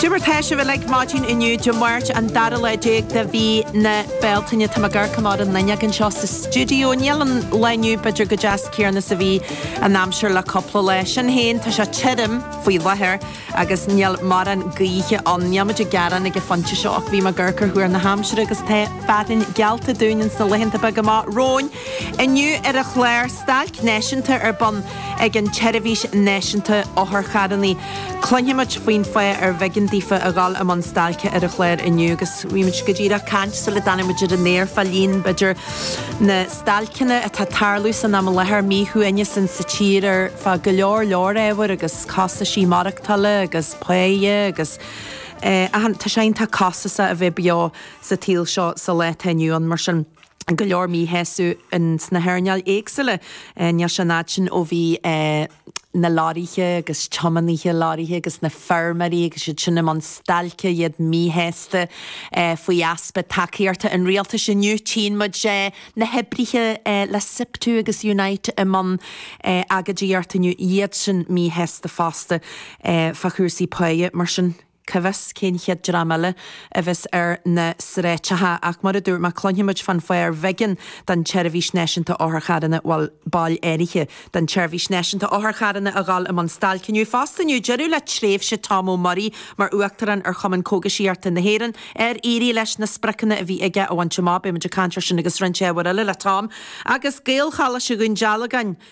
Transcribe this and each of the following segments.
Cad é mar tá sibh uilig maidin inniu, Dé Máirt, an dara lá déag de mhí na Bealtaine. Tá mé ag amharc amach ar an fhuinneog anseo sa stiúideo. Níl an lá inniu b'fhéidir chomh deas céanna is a bhí an aimsir le cúpla lá. Sin féin, tá sé tirim faoi láthair agus níl morán gaoithe ann. Níl muid ag gearán ag an phointe seo ach bhí mé ag amharc ar thuar na haimsire agus tá fearthainn geallta dúinn ins na laethanta beaga amach romhainn. Inniu ar an chlár, Stailc Náisiúnta ar bun. ag an tSeirbhís Náisiúnta Otharcharranna. Cluinfimid faoin fáth arbh éigean daofa a dhul i mbun stailce ar an chlár inniu agus bhí muid go díreach ag caint sula dtáinig muid ar an aer fá líon, b'fhéidir, na stailceanna atá tarlú san am i láthair, míshuaimhneas ann sa tír ar fá go leor leor ábhar agus costaisí maireachtála agus páighe agus achan, tá sé iontach costasach a bheith beo sa tsaol seo sa lá atá inniu ann mar sin. go leor míshásaimh ins na hairneáil éagsúla. Níl sé an fhad sin ó bhí na lorraithe agus tiománaithe lorraithe agus na feirmeoirí agus iad sin i mbun stailce, iad míshásta faoi easpa tacaíochta an rialtais. Inniu tchíonn muid na hoibrithe le Siptu agus Unite i mbun agóidíocht inniu, iad sin míshásta fosta fá chúrsaí páighe. Mar sin. cá bhfios cén chéad dream eile a bheas ar na sráideacha ach mar a dúirt mé, cluinfimid fán fháth arbh éigean don tSeirbhís Náisiúnta Otharcharranna, bhuel, baill áirithe den tSeirbhís Náisiúnta Otharcharranna a dhul i mbun stailce inniu fosta. Inniu deireadh le tréimhse Tom Ó Muirí mar Uachtarán ar Chumann Cógaisíochta na hÉireann, ar éirigh leis na spriocanna a bhí aige a bhaint amach, beidh muid ag caint ar sin agus roinnt ábhar eile le Tom, agus Gaelcholáiste Dhún Dealgan,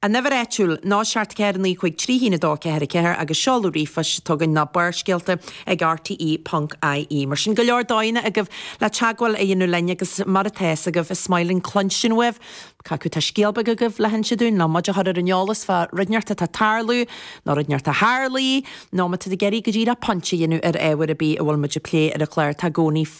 An uimhir áitiúil ná 749531244 agus seoladh ríomhphoist atá againn ná Barrscéalta ag rte.ie. Mar sin, go leor dóigheanna agaibh le teagmháil a dhéanamh linn agus mar atá fhios agaibh, is maith linn cluinstin uaibh, cé acu tá scéal beag agaibh le hinse dúinn, nó muid a chur ar an eolas fá rud inteacht atá tarlú, nó rud inteacht a tharlaigh, nó má tá tú ag iarraidh go díreach pointe a dhéanamh ar ábhar ar bith a bhfuil muid ag plé ar an chlár, tá i gcónaí.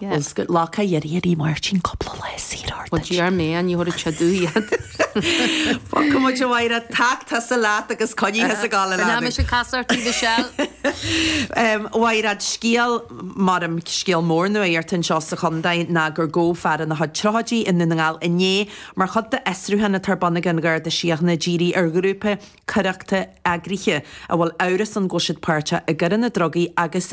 Is go Locha Dheirg a bhí Máirtín cúpla lá saor ó Well, gee, our man, you ought to check do yet. Fágfaidh muid a Mháire, tac, tusa leat agus coinnigh thusa go le An am leanbh. sin cas ort í Michelle. Mhairéad, scéal, maram scéal mór nuaíocht anseo sa chontae ná gur gabhadh fear ina chuid tríochaidí i nDún na nGall inné mar chuid d'fhiosrúchán atá ar bun ag an Gharda Síochana dírithe ar ghrúpa coireachta eagraithe a bhfuil amhras ann go bhfuil siad páirteach i gcoireanna drugaí agus